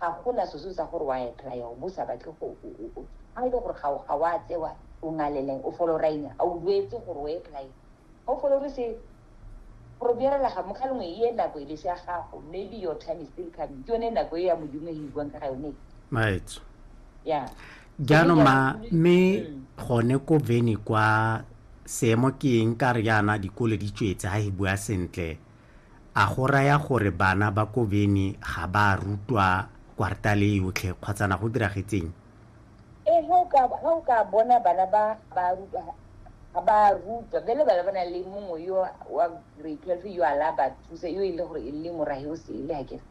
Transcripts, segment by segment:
ga gona seso sa gore wa etlaya o bo sa batle go ga e le gore ga ga wa tsewa o ngaleleng o folo raina a o duetse gore o etlaya ga o folo re se gore bjerela ga motlha lengwe e nako e le se ya gago maybe your time is still coming ke yone nako e ya modimo e buang ka ga yone right yeah jaanong ma mme mm. gone ko veni kwa seemo ke eng ka re yana dikole di tswetse ga e bua sentle A go raya gore bana ba ko Beni ga ba a rutwa kwartale e yotlhe kgotsa na go diragetseng? Ee, ga o ka, ga o ka bona bana ba ba rutwa, ga ba a rutwa. Bjale bana ba na le mongwe yo wa grade twelve yo a la ba thusa, yo e le gore e le morahe o sele akere,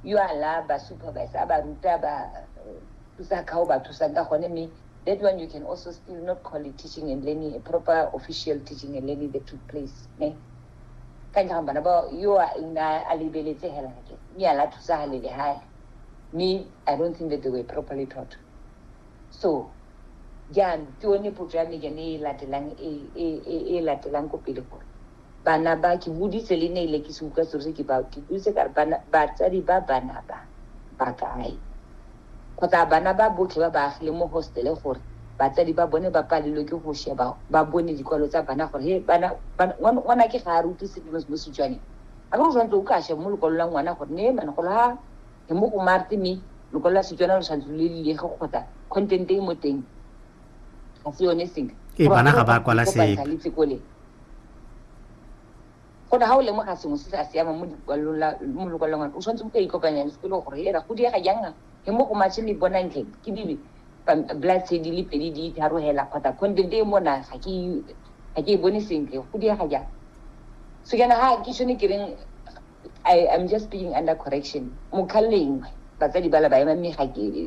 yo a la ba supervise, a ba ruta, a ba thusa ka o ba thusang ka gone. Mme that one you can also still not call it teaching and learning, a proper official teaching and learning that took place, ne. Ka ntlha ga bana ba yo a nna a lebeletse hela ke mme a la thusa ha lele hae mme i don't think that they were properly taught so jang ke one potso ya mejan e latelang e, e, e, e latelang ko pele gore bana ba ke boditse le ne ile ke se utlwa selo se ke ba ke boditse ka re batsadi ba bana ba ba kae kgotsa bana ba botlhe ba ba agileng mo hostele gore batsadi ba bone ba palelwe ke go sheba ba bone dikwalo tsa bana gore he bana ngwana ke ga a re utlwe sepe mo setswaneng a ke go tshwanetse o ka sheba mo lokwalo la ngwana gore ne mane go la he mo go marte mme lokwalo la setswana lo tshwanetse le lilege kgotsa content e mo teng ga se yone sentle ee bana ga ba kwala sepe Go na ga o lemoga sengwe se sa siamang mo lokwalong, o tshwanetse go ka ikopanya le sekolo gore ena go diega jang he mo go matšhe le bonantle ke dibe blood tse di le pedi di itharogela kgotsa content e mona ga ke e bone sentle go diega jang so kana ha ke shone ke reng I am just being under correction mokhalengwe batsadi ba la ba ema mme ga ke